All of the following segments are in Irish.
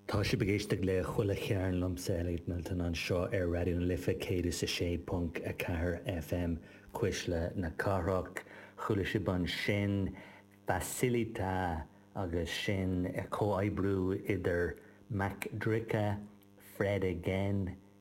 Tá sibh ag éisteacht le Chuile Chearn liomsa, Elliot Milton, anseo ar Raidió na Life 106.4 FM, Cuisle na Cathrach. Chuala sibh ansin Facilita agus sin comhoibriú idir MC Dricka, Fred again,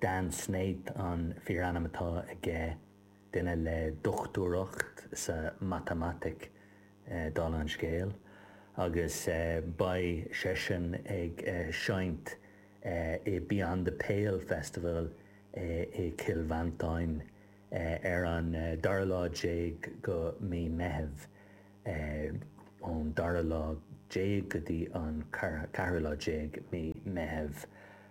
Dan Snaith an fíorainm atá aige, duine le dochtúireacht sa mhatamaitic, dála an scéil, agus beidh seisean ag seinnt i Beyond The Pale Festival i Cill Mhantáin ar an dara lá déag go mí Meithimh, ón dara lá déag go dtí an ceathrú lá déag mí Meithimh.